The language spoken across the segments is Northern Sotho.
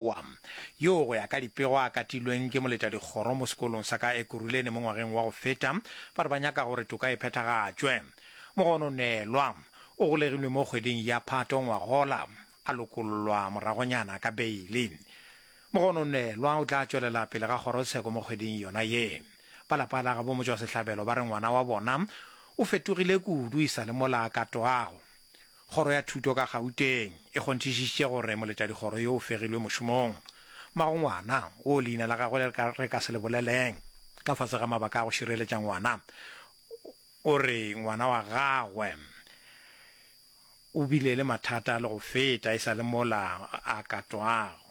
wa, yoo go ya ka dipego a katilweng ke moletadikgoro mo sekolong sa ka Ekurhuleni mo ngwageng wa go feta, ba re ba nyaka gore toka e phethagatšwe. Mogono Nelwa o golegilwe mo kgweding ya Phato ngwagola, a lokollwa moragonyana ka beili. Mogono Nelwa o tla tšwelela pele ga kgorotsheko mo kgweding yona ye. Ba lapa la gabo Motšwasehlabelo ba re ngwana wa bona o fetogile kudu e sa le mola a ka twago. Kgoro ya Thuto ka Gauteng e kgonthišišitše gore moletšadikgoro yo o fegilwe mošomong, mmagongwana wo leina la gagwe le re ka se le boleleng ka fase ga mabaka a go šireletša ngwana, o re ngwana wa gagwe o bile le mathata le go feta e sa le mola a katwago.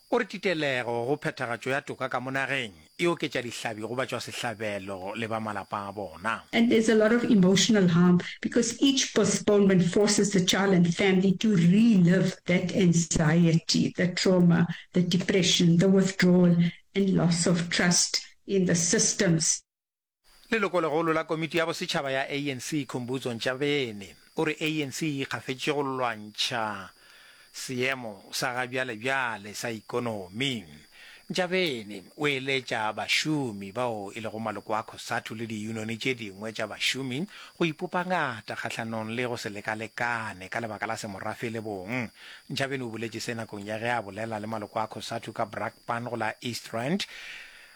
O re titelego go phethagatšo ya toka ka mo nageng e oketša dihlabi go batšwasehlabelo le ba malapa a bona. And there's a lot of emotional harm because each postponement forces the child and family to relive that anxiety, the trauma, the depression, the withdrawal and loss of trust in the systems. Lelokolegolo la Komiti ya Bosetšhaba ya ANC Khumbudzo Ntshavheni o re ANC e ikgafetše go lwantšha seemo sa ga bjalebjale sa ikonomi. Ntshavheni o eletša bašomi bao e lego maloko a Cosatu le diyunoni tše dingwe tša bašomi go ipopa ngata kgahlanong le go se lekalekane ka lebaka la semorafe le bong. Ntshavheni o boletše se nakong ya ge a bolela le maloko a Cosatu ka Brakpan go la East Rand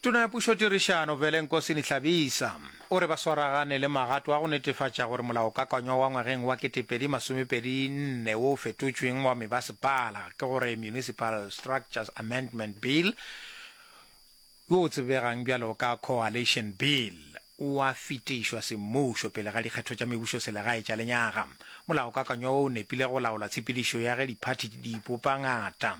Tona ya Pušo Tirišano Vele Nkosini Hlabisa o re ba swaragane le magato a go netefatša gore molaokakanywa wa ngwageng wa 2024 wo o fetotšweng wa mebasepala ke gore Municipal Structures Amendment Bill wo o tsebegang bjalo ka Coalition Bill o a fetišwa semmušo pele ga dikgetho tša mebušoselegae tša lenyaga. Molaokakanywa wo o nepile go laola tshepedišo ya ge diphathi di ipopa ngata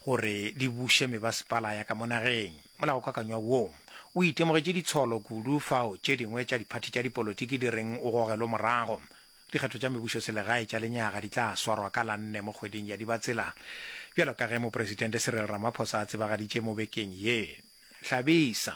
gore di buše mebasepala ya ka mo nageng. Molaokakanywa wo o itemogetše ditsholo kudu fao tše dingwe tša diphathi tša dipolotiki di reng o gogelwe morago. Dikgetho tša mebušoselegae tša lenyaga di tla swarwa ka la nne mo kgweding ya Dibatsela, bjalo ka ge Mopresidente Cyril Ramaphosa a tsebagaditše mo bekeng ye. Hlabisa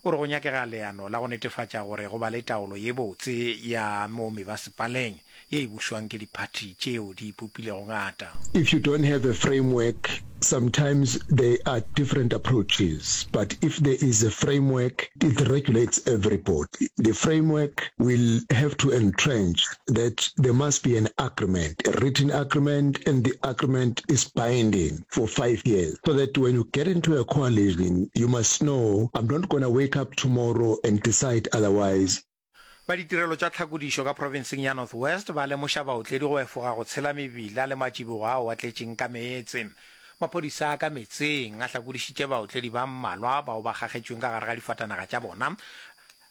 o re go nyakega leano la go netefatša gore go ba le taolo ye botse ya mo mebasepaleng ye e bušwang ke diphathi tšeo di ipopilego ngata. If you don't have a framework, sometimes there are different approaches, but if there is a framework, it regulates everybody. The framework will have to entrench that there must be an agreement, a written agreement, and the agreement is binding for five years. So that when you get into a coalition, you must know I'm not going to wake up tomorrow and decide otherwise. Ba ditirelo tša tlhakodišo ka profenseng ya North West ba lemoša baotledi go efoga go tshela mebila le matšibogo ao a tletšeng ka meetse. Maphodisa a ka metseng a hlakodišitše baotledi ba mmalwa bao ba kgakgetšweng ka gare ga difatanaga tša bona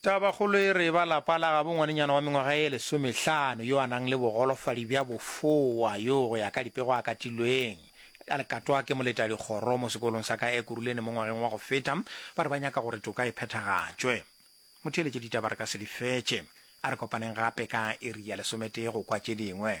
Tabakgolo e re e ba lapa la gabo ngwanenyana wa mengwaga e lesomehlano yo a nang le bogolofadi bja bofowa yo go ya ka dipego a katilweng a lekatwa ke moletadikgoro mo sekolong sa ka Ekurhuleni mo ngwageng wa go feta. Ba re ba nyaka gore toka e phethagatšwe. Motheeletše ditaba re ka se di fetše. A re kopaneng gape ka iri ya lesometee go kwa tše dingwe.